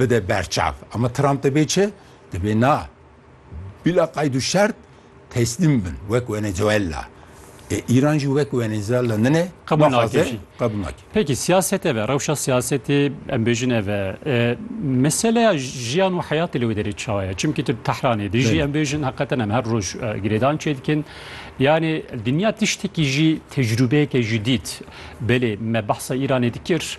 bide berçav. Ama Trump dibê çi? Dibê na bila qeyd û şert teslîm bin wek Wenezuela. E Îran jî wek Wenezuela nine Qebûl naxwaze nake jî. qebûl nake. Peki siyaset eve, rewşa siyasetê em bêjin eve. E, meseleya jiyan û heyatê li wê derê çawa ye? Çimkî tu Tehranê dê jî Belê. em bêjin heqeten em her roj e, girêdan çê dikin. Yanê dinya tiştekî jî tecrûbeyeke jidîd. Belê me behsa Îranê dikir.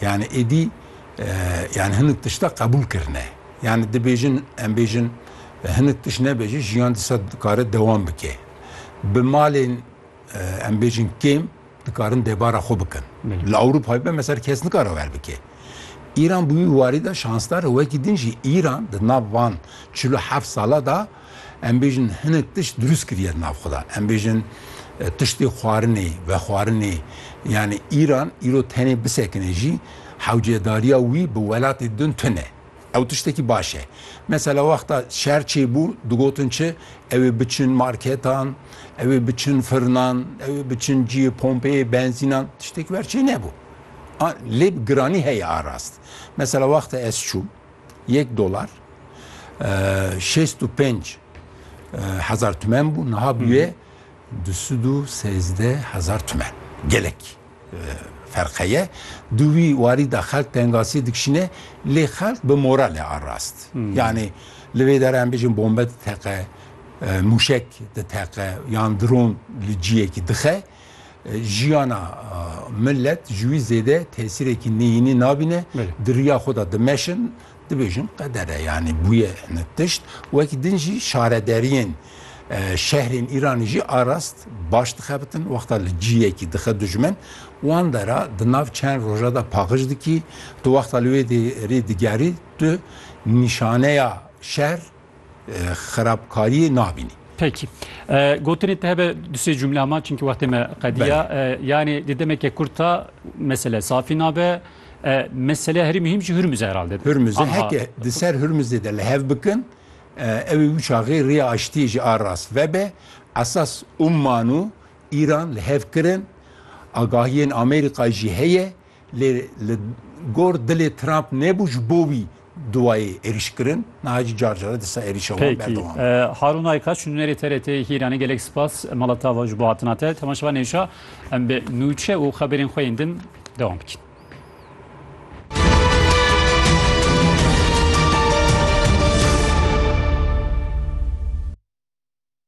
Yani êdî yani hinek tişta qebûl kirine. Yani dibêjin em bêjin hinek tiş nebe jî jiyan disa dikare dewam bike. Bi malên em bêjin kêm dikarin debara xwe bikin. Li Ewropayê be mesela kes nikare wer bike. Îran bi wî warî de şansdar e wekî din jî Îran di nav van çil û heft sala da Em bêjin hinek tişt dirûst kiriye di nav xwe de. Em bêjin tiştê xwarinê, vexwarinê yanî Îran îro tenê bisekine jî hewcedariya wî bi welatê din tune. Ew tiştekî baş e. Mesela wexta şer çêbû digotin çi, ew ê biçin marketan, ew ê biçin firinan, ew ê biçin cihê pompeyê benzînan. Tiştekî ber çênebû. Lê bi giranî heye a rast. Mesela wexta ez çûm. Yek dolar şêst û pênc hezar tümen bû, niha bûye du sed û sêzdeh hezar tümen. Gelek ferqe ye. Di wî warî de xelk tengasiyê dikişîne lê xelk bi moralê a rast. Yanî li vê dere em bêjin bombe diteqe, mûşek diteqe yan dron li ciyekî dixe. Jiyana milet ji wî zêde tesîrekî neyînî nabîne, di riya xwe de dimeşin, dibêjin qeder e, yanî bûye hinek tişt. Wekî din jî şarederiyên şehrên Îranê jî a rast baş dixebitin, wexta li ciyekî dixe dijmin, wan dera di nav çend roja de paqij dikî, tu wexta li wê rê digerî, tu nîşaneya şer, xerabkariyê nabînî. Pekî. Gotinê te hebe du sê cumle ama çimkî wextê me qediya. Yanî di demeke kurt de mesele safî nabe. Meseleya herî muhîm jî Hurmuz e herhalde. Hurmuz e. Heke di ser Hurmuzê de li hev bikin ewê wisa xêr rêya aştiyê jî a rast vebe. Esas Umman û Îran li hev kirin. Agahiyên Amerîkayê jî heye. Lê li gor dilê Trump nebû ji bo wî duwayê êrîş kirin, niha jî car car e disa êrîşa wan berdewam e. Pêkî. Harûn Ayka, Şûnêrê TRT'ê hîr anî gelek spas mala te ava ji bo hatina te. Temaşevan hêşa em bi nûçe û xeberên xwe yên din dewam bikin.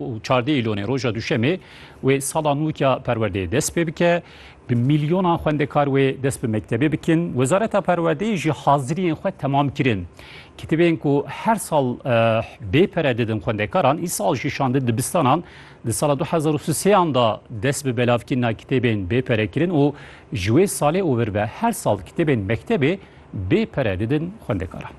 û çardê îlonê roja duşemê wê sala nû ya perwerdeyê dest pê bike. Bi mîlyonan xwendekar wê dest bi mektebê bikin. Wezareta Perwerdeyê jî haziriyên xwe temam kirin. Kitêbên ku her sal bê pere didin xwendekaran îsal jî şandin dibistanan. Di sala du hezar û sêyan de dest bi belavkirina kitêbên bê pere kirin û ji wê salê û vir ve her sal kitêbên mektebê bê pere didin xwendekaran.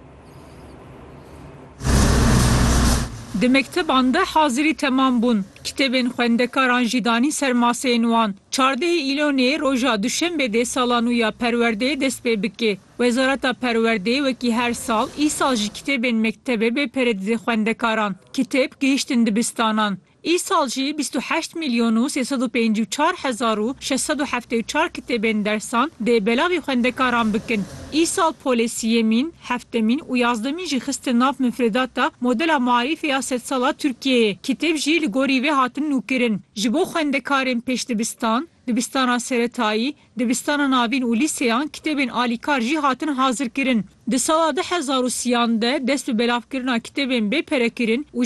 Di mekteban de hazirî temam bûn. Kitêbên xwendekaran jî danîn ser maseyên wan. Çardehê Îlonê roja Duşenbê dê sala nû ya perwerdeyê dest pê bike. Wezareta Perwerdeyê wekî her sal, îsal jî kitêbên mektebê bê pere dide xwendekaran. Kitêb gihîştin dibistanan. Îsal jî bîst û heşt mîlyon û sê sed û pêncî û çar hezar û şeş sed û heftê û çar kitêbên dersan dê belavî xwendekaran bikin. Îsal polê sîyemîn, heftemîn û yazdemîn jî xistin nav mifrêdata modela maarîfê ya sedsala Tirkiyeyê. Kitêb jî li gorî vê hatin nûkirin. Ji bo xwendekarên pêşdibistan, dibistana seretayî, dibistana navîn û lîseyan kitêbên alîkar jî hatin hazirkirin. Di sala du hezar û sîyan de dest bi belavkirina kitêbên bê perekirin û